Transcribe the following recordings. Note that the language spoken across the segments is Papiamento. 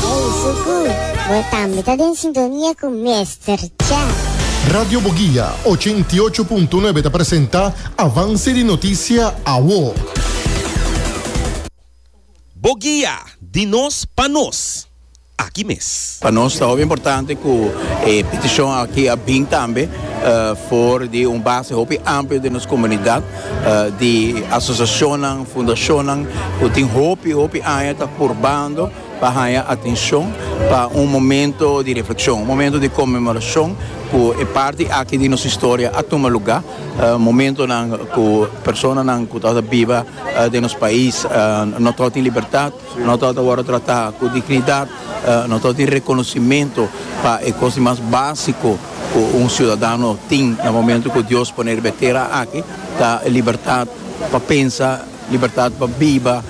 Ey Suku, bo tambe ta den sintonia cu Mester Cha. Radio Boguia ochenta i ocho punto nuebe ta presenta Avance di Noticia Awo. Boguia, di nos pa nos, aki mes. Pa nos ta hopi importante cu e peticion aki a bin tambe for di un base hopi amplio den nos comunidad di asociacionnan, fundacionnan cu tin hopi, hopi aña ta purbando. pa haña atencion pa un momento di reflexion, un momento di conmemoracion cu e parti aki di nos historia a tuma luga, momentonan cu personanan cu tabata biba den nos pais no tabata tin libertad, no tabata wordo trata cu dignidad, no tabata tin reconocimento pa e cosnan mas basico cu un ciudadano tin na momento cu Dios pone riba e tera aki ta libertad pa pensa, Libertat pa biba,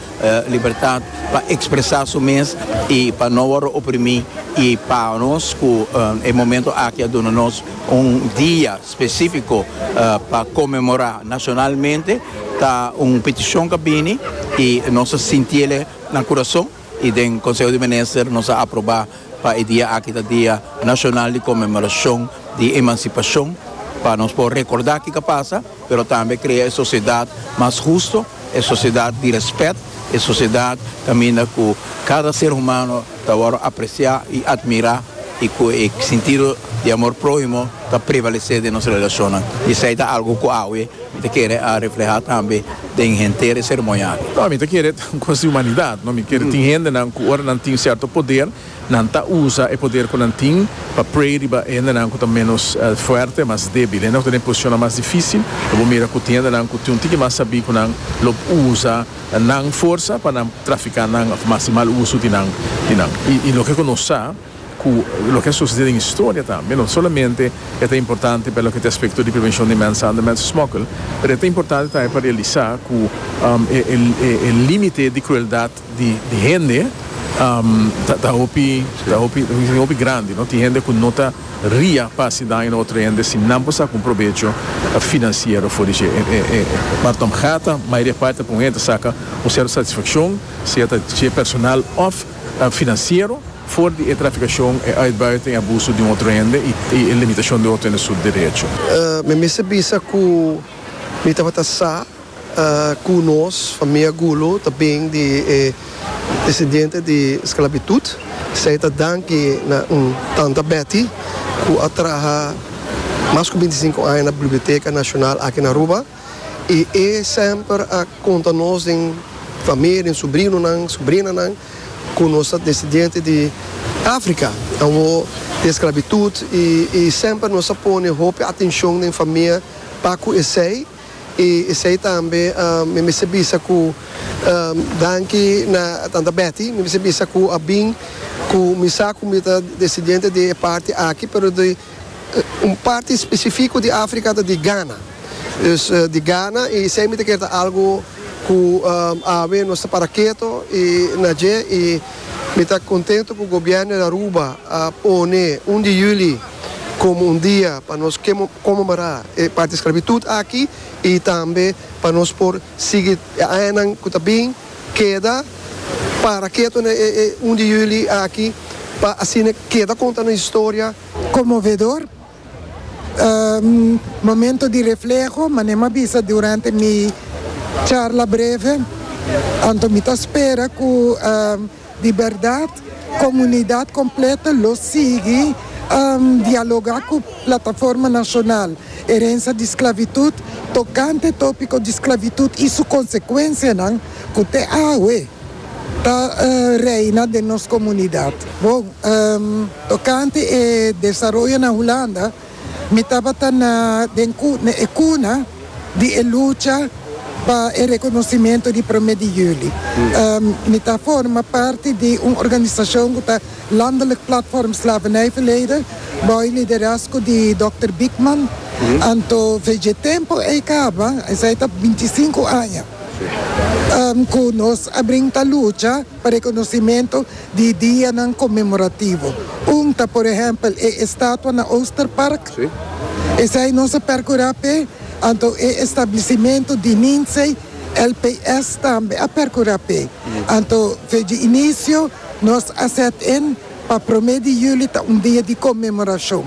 libertat pa expresa su mes y pa no worde oprimi y pa nos cu e momento aki a duna nos un dia specifico pa conmemora nacionalmente ta un peticion ca bini y nos ta sinti ele na curason. y den Conseho di Minister nos a aproba pa e dia aki ta Dia Nacional di Conmemoracion di Emancipacion, pa nos por recorda kico a pasa, pero tambe crea e sociedad mas husto, e sociedad di respet, e sociedad caminda cu cada ser humano ta worde aprecia y admira y cu e sentido di amor prohimo ta prevalece den nos relacionnan, y esey ta algo cu awe. Mi ta kere a reflehá tambe den henter e seremonia aki. No, mi ta kere ta un kos di humanidat, no. Mi kere tin hendenan ku ora nan tin sierto poder, nan ta usa e poder ku nan tin pa prei riba e hendenan ku ta ménos fuerte, mas débil. Hendenan ku ta den posicionnan mas difísil, lo bo mira ku tin hendenan ku tin un tiki mas sabí ku nan lo usa nan forsa pa nan trafiká nan òf mas di mal uso di nan. I loke ku nos sa. cu loke a sucede den historia tambe, no solamente e ta importante pa loke ta aspecto di prevencion di mensahandel y mensensmokkel, pero e ta importante tambe pa realisa cu e limite di crueldad di hende ta hopi ta hopi ta hopi grandi, tin hende cu no ta ria pa haci daño na otro hende si nan por saca un probecho financiero for di dje. E Bartomgea ta mayoria parti ta pone hende ta saca un cierto satisfaccion, sea ta dje personal of. Financiero, for di e traficacion, e uitbuiten, e abuso di un otro hende y e limitacion di otro hende su derecho. Mi mester bisa cu mi tabata sa cu nos famia Gulu ta bin di e descendiente di sclabitud. Esey ta danki na un tanta Betty cu a traha mas cu binti sinku aña na Biblioteca Nacional aki na Aruba. I e semper a konta nos den famia, den subrinonan, subrinanan, ku nos ta desidiente di Afrika, awor di esklabitut, i semper nos a pone hopi atenshon den famia pa ku esei, i esei tambe mi mester bisa ku danki na tanta Betty, mi mester bisa ku a bin ku mi sa ku mi ta desidiente di e parti aki, pero di un parti spesifiko di Afrika ta di Gana. Dus di gana i semi ta kier ta algu ku awe nos ta para keto i na dje i mi ta kontentu ku Gobièrnu di Aruba a pone un di juli komo un dia pa nos konmemorá e parti sklavitut aki i tambe pa nos por sigui e añanan ku ta bin keda para keto na e un di juli aki pa asina keda konta nos historia. Konmovedor! Momento di refleho, Mane m'a bisa durante mi charla breve, anto mi ta spera cu di berdad comunidad completo lo sigui dialoga cu Plataforma Nacional Herencia di Sclavitud tocante topico di sclavitud y su consecuencianan cu te awe. Ta reina den nos komunidat. Bon, tokante e desaroyo na Hulanda, mi tabata na den e kuna di e lucha pa e rekonosimentu di Prome di Juli. Mi ta forma parti di un organisashon ku ta Landelijk Platform Slavernijverleden, bou liderazgo di Dòkter Biekman. Anto, veje tempu ei kaba, esei ta binti sinku aña. Ku nos a brinta lucha pa rekonosementu di dianan konmemorativo. Un ta por ehèmpel e estatua na Oosterpark. Esei nos a perkurá p'e. Anto e establisimentu di Ninzei LPS tambe a perkurá p'e. Anto feji inisio nos a sèt in pa promé di juli ta un dia di konmemorashon.